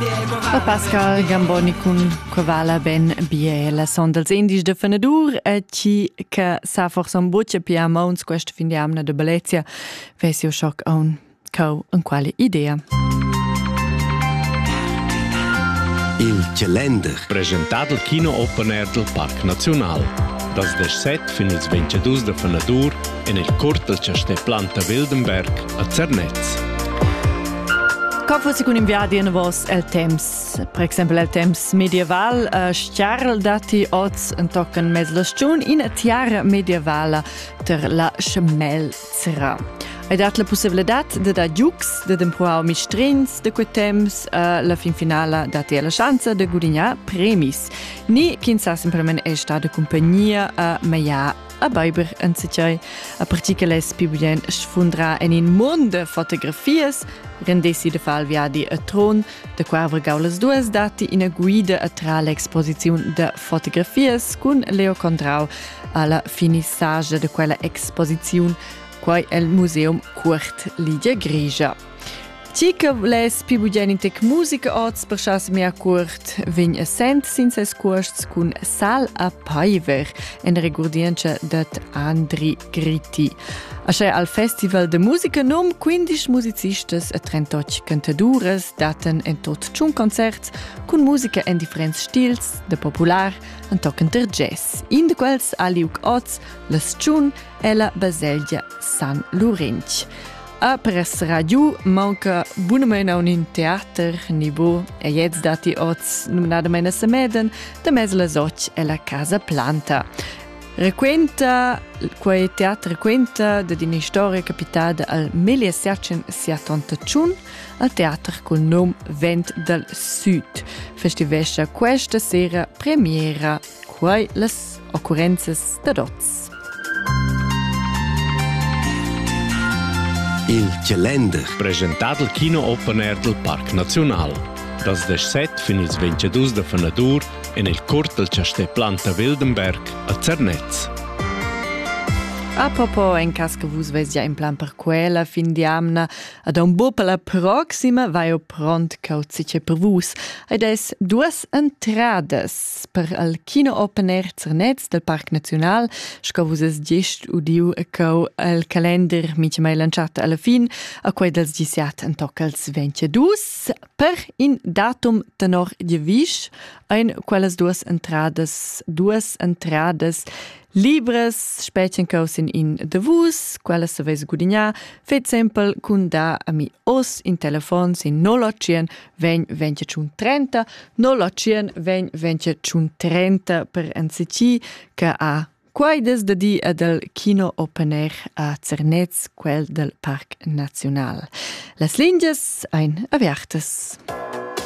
A Pascal Gamboni cun que vala ben bie la son dals indies de fenadur e chi che sa forsa un buccia pia mauns questa fin di amna de Bellezia vesi o schoc a un cau in quale idea. Il calender presentato al kino open air del Parc Nacional. Das 17 fin ils 22 de fenadur en il curt dal chastè Planta Wildenberg a Zernez. Co fossi cun in viadi en vos el temps? Per exempel el temps medieval, uh, stiarl dati oz en tocken mez la stiun in tiara medievala ter la schmelzra. Hai dat la possibilità de da giucs, de d'empruar mistrins de quei temps, uh, la fin finala dati la chance de gudignare premis. Ni, kin sa semplicemente è stata compagnia a uh, meia a beiber enzatgei, a pertgi che less più bien sfundra en in mund de fotografias, rendessi de far viadi a tron, de qua avrgau las duas dati ina guida a tra l'exposiziun de fotografias cun Leo Condrau alla finissage de quella exposiziun, quai el Museum Cuort Lidia Grigia. Ti che vuless pi bugen in tec musica oz per chas mia cuort, vegn e sent sin ses cuosts cun Sal a Paiver en regurdientscha dat Andri Griti. Asche al Festival de Musica nom 15 musicistas e 38 cantaduras daten en tot tschun concerts cun musica en differents stils, de popular an toccenter jazz. In de quels aliuc oz, la Stschun e la baselgia San Lurench. A pres radio manca bunamain a un teater nibo e jetzt dati oz numnadamain a Semeden da mez las och e la casa planta. Requenta, quei teater requenta da d'ina storia capitada al 1771 al teater col nom Vent dal Sud. Festivescia questa sera premiera Quai las occurrenzas dad oz. Il Calender, presentà dal Kino Open Air dal Parc Naziunal. Das 17 fin ils 22 da fenadur en il curt dal chastè Planta Wildenberg a Zernez. A propo en cas che vus vesia in plan per quella fin di amna, ad un buo per la proxima vaio pront cauzice per vus. Ed es duas entradas. per al kino open air Zernez del Parc Naziunal, sco vus es gist udiu e cau el calender mica mai lanciato alla fin, a quei dels disiat en toccals 22, per in datum tenor divisch, ein quellas duas entradas, duas entradas libres spetchen caus in in de vus, quellas se veis gudignar, fait sempre cun da a mi os in telefon sin 081 vegn ventia tschun trenta, no la tschien vegn ventia tschun trenta per anzici che ha quaides da di e del Kino Open Air a Zernez, quel del Parc Naziunal. Las lingias ein avertas.